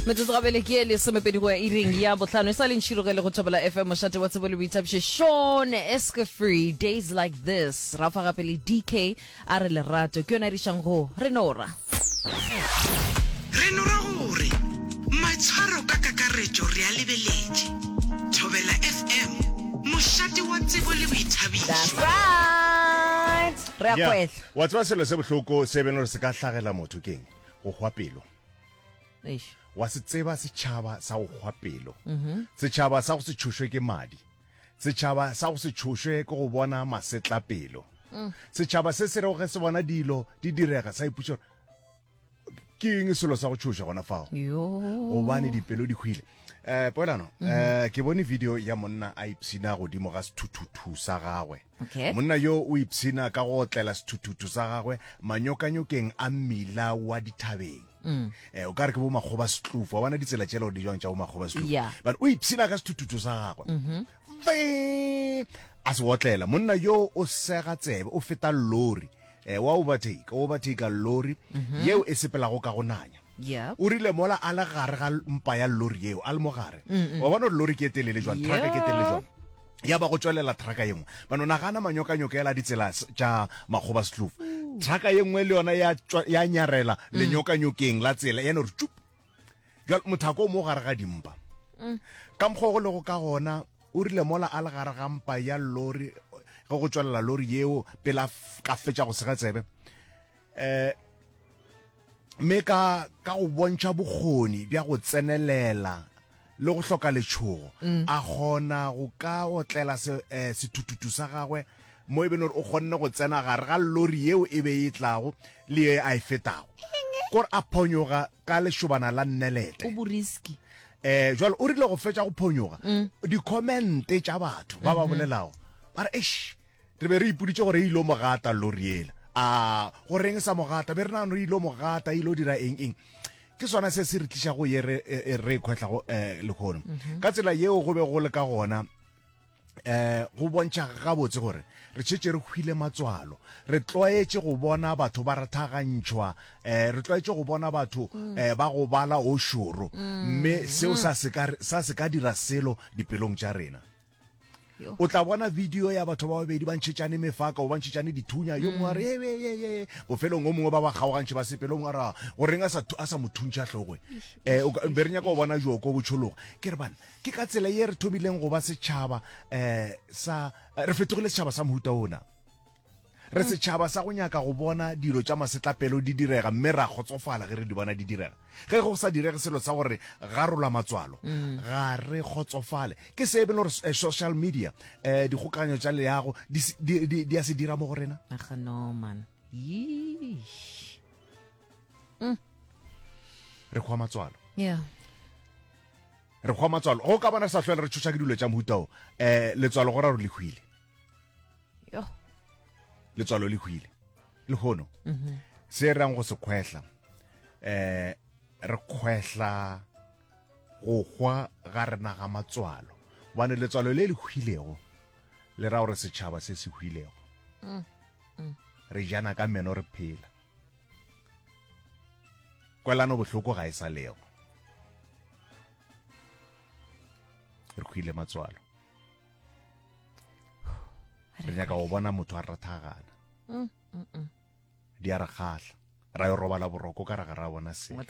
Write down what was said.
metsotso gabele ke e lesomepedi go ya iring ya botlhano e sa leng tšhirogele go thobela fm mošate wa tsebo le boithabiše sean eske free days like this ra fa gape le dk a re lerato ke yone a dišang go re nora re no ra gore maitshwaro ka kakaretšo re a lebeletše thobela fm mošate wa tsebo le boithabišo right re a Yeah. kgwehla wa tseba selo se bohloko se beno re se ka hlagela motho keng go hwa pelo Eish. wa se tseba setšhaba sa go kgwa pelo mhm. setšhaba sa go se tšhošwe ke madi setšhaba sa go se tšhošwe ke go bona masetla pelo mm. setšhaba se se regoge se bona dilo di direga sa ipuša ke eng selo sa go tšhoša gona fao gobane dipelo di hwile um eh, poelano um ke bone video ya monna a ipshina godimo ga sethuthuthu sa gagwe Okay. monna yo o ipshina ka go otlela sethuthuthu sa gagwe manyokanyokeng a mmila wa dithabeng mm. eh, o ka re ke bo makgoba setlufu wa bona ditsela tšela o di jwang tša bo makgoba setlufu yeah. but o ipshina ka sethuthuthu sa gagwe mm -hmm. a se otlela monna yo o sega tsebe o feta lori eh, wa overtake o overtake lori mm -hmm. yeo e sepelago ka go nanya Yep. o rile mola a le gare ga mpa ya lori yeo a le mo gare wa bona gore lori ke e telele jwang traka ke e telele jwang ya ba go tswelela traka ye nngwe bano nagana manyokanyokela ditsela s- tša makgoba setlofu traka ye nngwe le yona ya tšwa- ya nyarela lenyokanyokeng la tsela ya no re tšup jwale mothako o mo gare ga dimpa ka mokgwa o go lego ka gona o rile mola a le gare ga mpa ya lori ge go tswelela lori yeo pele a f- ka fetša go sega tsebe eh, mme ka ka go bontšha bokgoni bja go tsenelela le go hloka letšhogo mm. a kgona go ka otlela eh, sethuthutu sa gagwe mo e bene gore o kgonne go tsena gare ga lori yeo e be e tlago le ye a e fetago kore a phonyoga ka lešobana la nnelete eh jalo o rile go fetsa go phonyoga mm. di-commente tša batho ba ba mm-hmm. bolelago ba re eish Re be re ipoditše gore e ilo mo gata lori yela. A go reng sa mo gata? Be re nagano e ilo mo gata, e ilo dira eng eng. Ke sona se se re tliša go ye re, e, e, re khwehla go eh, lekhono. Mhm. Ka tsela yeo go be go le ka gona eh go bontšha gabotse gore re tšhetše re hwile matswalo re tlwaetše go bona batho ba rathagantšhwa eh re tlwaetše go bona batho mm. eh ba go bala o šoro mm. mme seo sa se ka dira selo dipelong tša rena O tla bona bidio ya batho ba babedi ba ntšhetšane mefaka o ba ntšhetšane dithunya, yo mongwe a re mm. yeyeyeye, bofelong o mongwe ba ba kgaogantšhe ba sepele, o mongwe a ra goreng a sa mo thuntšha tlhogoe. Um eh, be re nyaka go bona joko bo tšhologa. Ke re bana, ke ka tsela ye re thomileng go ba setšhaba um sa re fetogile setšhaba sa mohuta ona. Re setšhaba sa go nyaka go bona dilo tša masetlapelo di direga mme ra kgotsofala ge re di bona di direga. Ge go sa direge selo sa gore garola matswalo, ga re kgotsofale. Ke se e bile gore eh, social media, eh, dikgokaganyo tša leago di se- di- di di a se dira mo go rena. Aga no man. Yeesh. Re kgwa matswalo. Yeah. Re kgwa matswalo. Go ka bona re sa hlwele re tšhoša ke dilo tša mohuta o. Eh, letswalo go ra gore le hwile. yo letswalo le hwile le hono mhm. se rang go se kgwehla eh re kgwehla go hwa ga rena ga matswalo bane letswalo le le hwilego le ra gore setšhaba se se hwilego mm, mm. re jana ka meno re phela kwelano bohloko ga e sa lego re hwile matswalo re nyaka go bona motho a rathagana mm, mm, mm. di a re kgahla ra yo robala boroko ka ra ga ra bona selo